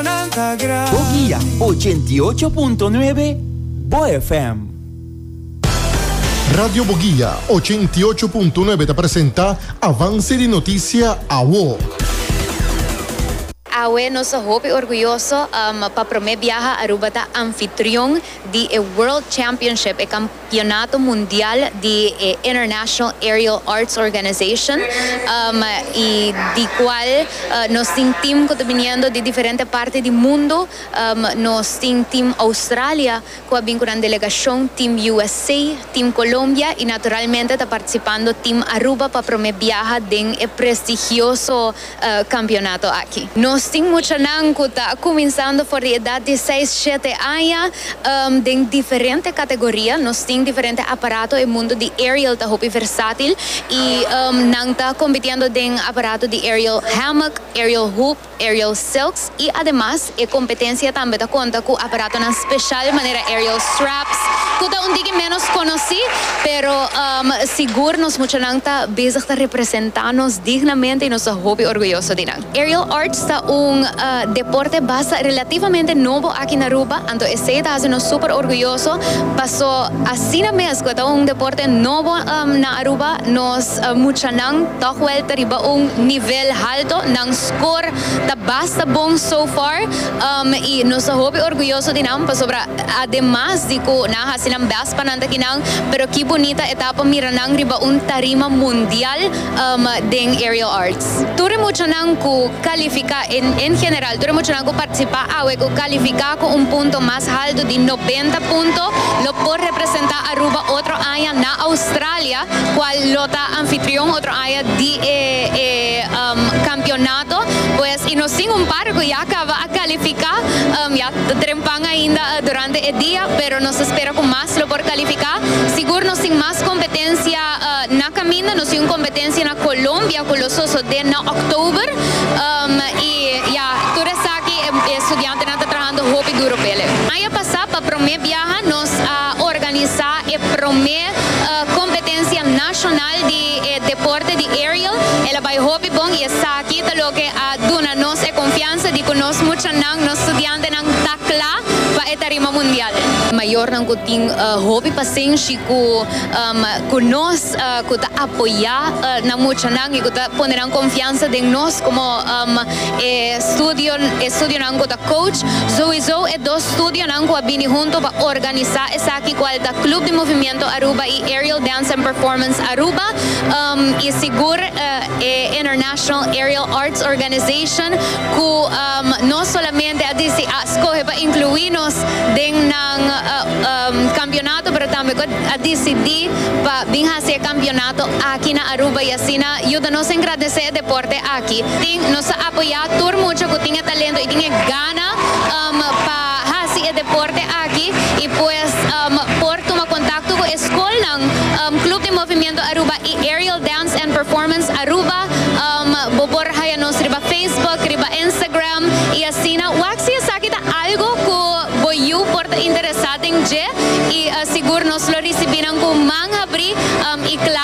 Bo guia ochenta i ocho punto nuebe Bo FM. Radio Bo Guia ochenta i ocho punto nuebe ta presenta Avance di Noticia Awo. Awe nos ta hopi orguyoso pa prome biaha Aruba ta anfitrion di e World Championship, e Campeonato Mundial di e International Aerial Arts Organization y di cual nos tin team cu ta biniendo di diferente parti di mundo. Nos tin team Australia cu a bin cu nan delegacion, team USA, team Colombia y naturalmente ta participando team Aruba pa prome biaha den e prestigioso. kampionato aki. Nos tin muchanan ku ta kuminsando for di edat di seis, shete aña den diferente kategoria. Nos tin diferente aparato, e mundu di aerial ta hopi versatil i nan ta kompitiendo den aparato di aerial hammock, aerial hoop, aerial silks. I ademas e kompetensia tambe ta konta ku aparatonan speshal manera aerial straps ku ta un tiki ménos konosí, pero sigur nos muchanan ta bezig ta representá nos dignamente i nos ta hopi orguyoso di nan. Aerial arts ta un deporte basa relativamente nobo aki na Aruba, anto esei ta hasi nos súper orguyoso paso asina mes ku e ta un deporte nobo na Aruba nos muchanan tòg wèl ta riba un nivel halto, nan. Kor ta basta bon so far i nos ta hopi orguyoso di nan pasobra ademas di ku nan a hasi nan bèst pa nan ta ki nan pero ki bunita etapa mira nan riba un tarima mundial den Aerial Arts. Tur e muchanan ku kalifiká en general tur e muchanan ku partisipá awe ku kalifiká ku un punto mas haltu di nobenta punto lo por representá Aruba otro aña na Australia. cual lo ta anfitrion otro aña di e e um, campeonato, pues y nos tin un par cu ya caba a califica, um, ya trempan ainda uh, durante e dia, pero nos ta spera cu mas lo por califica. Sigur nos tin mas competencia uh, na caminda, nos tin un competencia na Colombia cu lo sosode na oktober, um, y ya tur esaki e, e studiantenan ta trahando hopi duro p'ele. Aña pasa pa prome biaha nos a organisa e prome. Competencia Nacional di e Deporte di Aerial el a bay hopi bon y esaki ta loke a duna nos e confianza di cu nos muchanan, nos studiantenan ta cla pa e tarima mundial. Mayornan cu tin hopi pasenshi cu cu nos, cu ta apoya nan muchanan y cu ta pone nan confianza den nos como. e studio e studionan ku ta coach, souiso e dos studionan ku a bini huntu pa organisa esaki kual ta Club di Movimiento Aruba i Aerial Dance and Performance Aruba um i sigur e International Aerial Arts Organization ku um no solamente a disi a skohe pa inkluí nos den nan um kampionato pero tambe ku a disidí pa bin hasi e kampionato aki na. Aruba y asina yuda nos engradece e deporte aki. Tin nos ta apoya tur mucha cu tin e talento y tin e gana um pa haci e deporte aki y pues um por tuma contacto cu e scolnan um Club di Movimiento Aruba y Aerial Dance and Performance Aruba um bo por haya nos riba Facebook, riba Instagram y asina wak si esaki ta algo cu bo yu por ta interesa den dje y sigur nos lo ricibinan cu man habri um y claro.